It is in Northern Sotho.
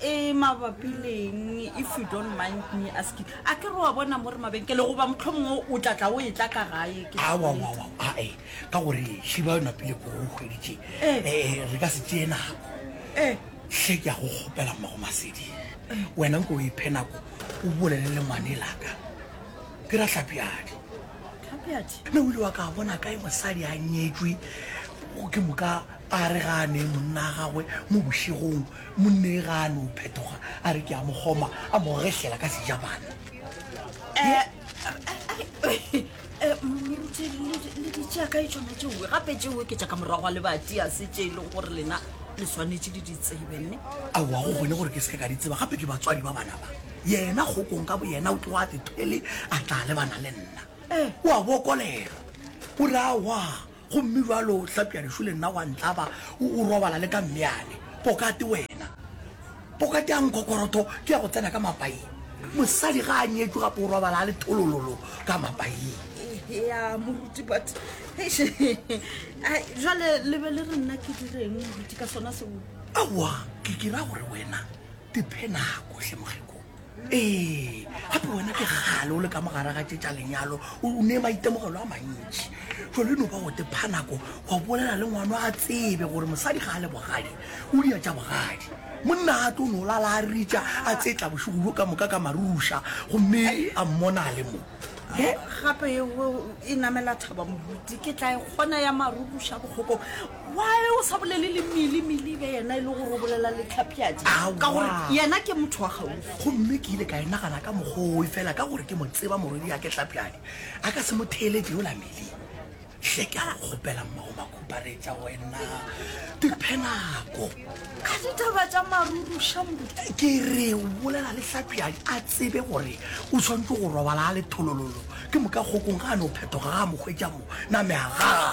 E mabapi leng if you don't mind me asking a ke re wa bona mo re mabenkele goba motlhomongwe o tla tla o e tla ka gae ke awawawa ae ka gore šiba o napile ko o kgweditše um re ka se tee nako um hle ke ya go kgopela mmago masedi wena nko o iphe nako o bolele le ngwane laka ke ra tlhapjadi tlhapjadi mme o ile wa ka bona kae mosadi a nyetswe ke moka A re ga a nee monna a gagwe mo bošegong, monnee ga a no phetoga, a re ke a mo kgoma, a mo gehlela ka sejabana. Moruti, le di tšea kae tšona tšeoe? Gape tšeoe ke tša ka morago ga lebati, ga se tše e lego gore lena le swanetše le di tsebe, nne? Aowa, go kgone gore ke seke ka di tseba, gape ke batswadi ba bana ba. Yena kgokong ka boyena o tloga a tethwele a tla lebana le nna. O a bokolela, o re aowa. Gomme bjalo o hlapša dišu le nna wa ntlaba, o, o robala le ka mmeane. Pokate wena! Pokate ya nkhokorotho ke ya go tsena ka mapaing. Mosadi ga a nyetšwe gape o robala a le tholololo ka mapaing. Ya, moruti, but, eish, ai, jwale le be le re nna ke direng, moruti, ka sona seo? Aowa, ke, ke ra gore wena, diphe nako, hle mogeko. ee gape wena ke gale o le ka mogare ga tše tša lenyalo o ne maitemogelo a mantši jalo no ba go tepha nako wa bolela le ngwano a tsebe gore mosadi ga a le bogadi o dia tša bogadi monna a tlo no lala a ritša a tsetla bošego bjo ka moka ka maruša gomme a mmona a le mo gape e namela thaba moruti ke tla e kgona ya marukuša bokgokong Why o sa bolele le Mili Mili be yena e le gore o bolela le Tlhapjadi ka gore yena ke motho wa gaufi. Gomme ke ile ka e nagana ka mokgoi fela ka gore ke mo tseba morwedi ya ke Tlhapjadi a ka se mo theeletše yola Mili. Hle ke a go kgopela mmago makhuparetša wena diphe nako. A ditaba tša maruruša mo. Ke re o bolela le Tlhapjadi a tsebe gore o tshwanetse go robala a le tholololo ke moka kgokong ga a no phetoga ga a mokgwetša mo na meagago.